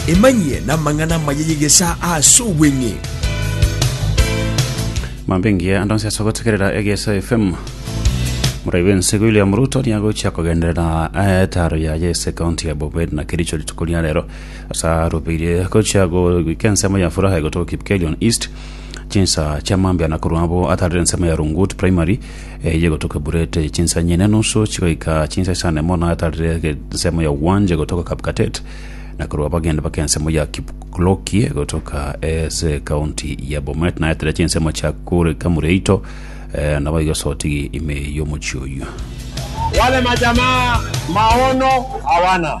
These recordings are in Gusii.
Emanyie namang'ana amaya y'egesaa ase obweng'e. Mambe ngiya ande onsi ase ogotegerera Egeso FM. Morai bw'ense William Ruto niye agochia kogenderera eh, etaro yaye ase ekaunti ya Bomet na Kericho rituko ria rero ase arubirie gochia goika ensemo ya Furaha egotoka Kipkelion East chinsa chia mambia na korwa abo atarire ensemo ya Rungut Primary Eye gotoka eburete ye chinsanya ine nusu chigoika chinsa isano emo na atarire ensemo ya Uwanje gotoka Kapkatet, na korwa abageni bake ensemo ya Kipklokie gotoka ase ekaunti ya Bomet, na atarire chinsemo chia Kure Kamureito, eh, naboigo sotigi ime y'omochie oyio. Wale majamaa maono hawana.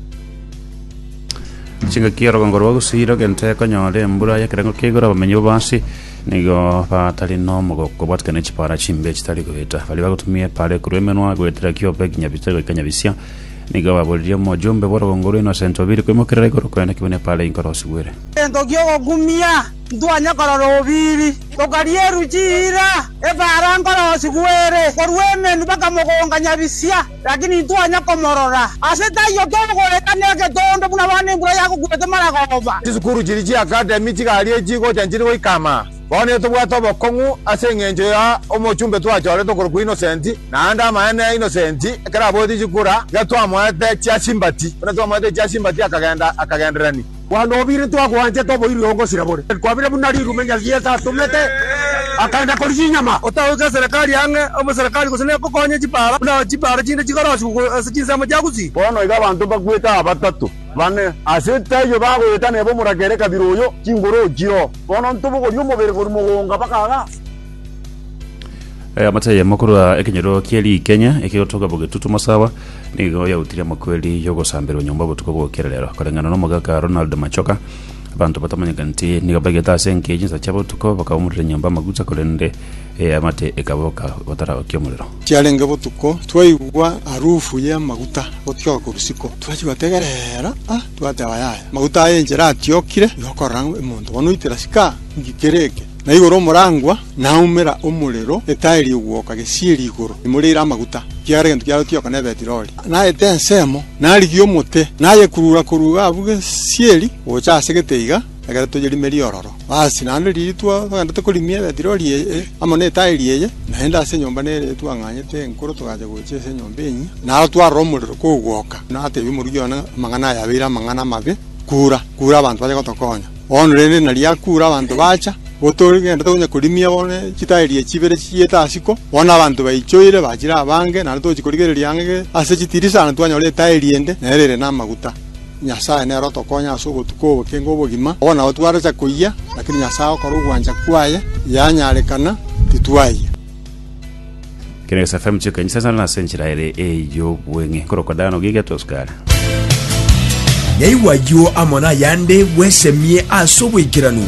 chingaki orogongo rwa gusii rogente konyora embura y'ekerengo kia igoro abamenyi babo ase nigo batari n'omogoko bwatikana ne chipara chimbe chitari goeta baria bagotumia epara ekorwa emenwa goetera kiobe kinya bita goika nyabisia nigo baboririe omojumbe bw'orogongo rwa Innocent Obiri koimokerera igoro korende kibe nepara inkorosigwere egento gi'ogogumia ntwanye korora Obiri. Tokaria eruchi ira epara nkorosigwere korwa emenwa bakamogonga nyabisia. Lakini intwanya komorora. Ase taiyo togoeta negetondo buna abana embura yagokuete maragoba. Chisukuru chiria chia Academy chigarie chigocha nchiri goika ama. Bono nigo tobwate obokong'u ase engencho ya omochumbe twachorete okorokwa Innocent, naende amaene Innocent ekero aboetie chikura, iga twamoete chia sympathy. Buna twamoete chia sympathy akagenda akagenderani. Bwana obire twagwanchete oboiri ongosira bore kwabire buna rirume Nyagieta atomete akaenda koria chinyama. Otagoika eserekari ang'e omoserekari gose negokonya chipaara buna chipaara chinde chigarosigwe ase chinsemo chia gusii. Bono iga abanto mbakwete aa batato, bane ase taiyo bagoyetana ebe omorakera ekabira oyo chinguru ochio. Bono ntobogorie omobere korwa mogonga mpaka gaa. Eh, amata yemo korwa ekenyero kie rikenya ekegotoka bogetutu masawa nigo yautire amakweri yogosamberwa nyomba obotuko bwokera rero koreng'ana nomogaka ronald machoka abanto batamanyeka nti nigo bagete ase enkeyo chinsa chia botuko bakaumorera nyomba amaguta korende eh, amate ekaboka bataraokia omorero Chiarenge botuko, twaigwa harufu y'amaguta gotioka korwa isiko. Twachia gotegerera, ah, twateba yaya, maguta aya enchera atiokire, igo okorora ng'a omonto bono oitera sika, nki kere eke? Na igoro omorangwa naumera omorero, etaai rigwoka gesieri igoro imoreire amaguta, ekiagera egento kiaroreti yoka ne Betiroli, naete ensemo, narigie omote, nayekurura-kurura abwo gesieri gocha ase geteiga, egere toyerimerie ororo. Basi naende riria twagendete korimia Betiroli eye amo netairi eye, naende ase enyomba nere eye twang'anyete enkoro togacha gocha ase enyomba enyia, naro twarora omorero kogwoka, natebia omoruki one, Amang'ana aya abeire amang'ana amabe, kura, kura abanto bache gotokonya. Bono rende na riakure abanto bacha, gotogendete onye korimia bono chitaeri echi chibere chichiete asiko, bono abanto baichoire bachire abange, naende togochi korigereria ang'e ase chitirisa na twanyora etaeri ende nere ere namaguta. Nyasae nere otokonye ase ogotuko oboke ng'obogima, obo nabo twaracha koyia, lakini Nyasae agokora ogwancha kwaye, yanyarekana, titwayia. Kene gesafe mucheka enchisa sana nase enchera ere ey'obweng'e korokwa dano giga tosukara. Yaigwa ayio amo nayande bwesemie ase oboikeranu.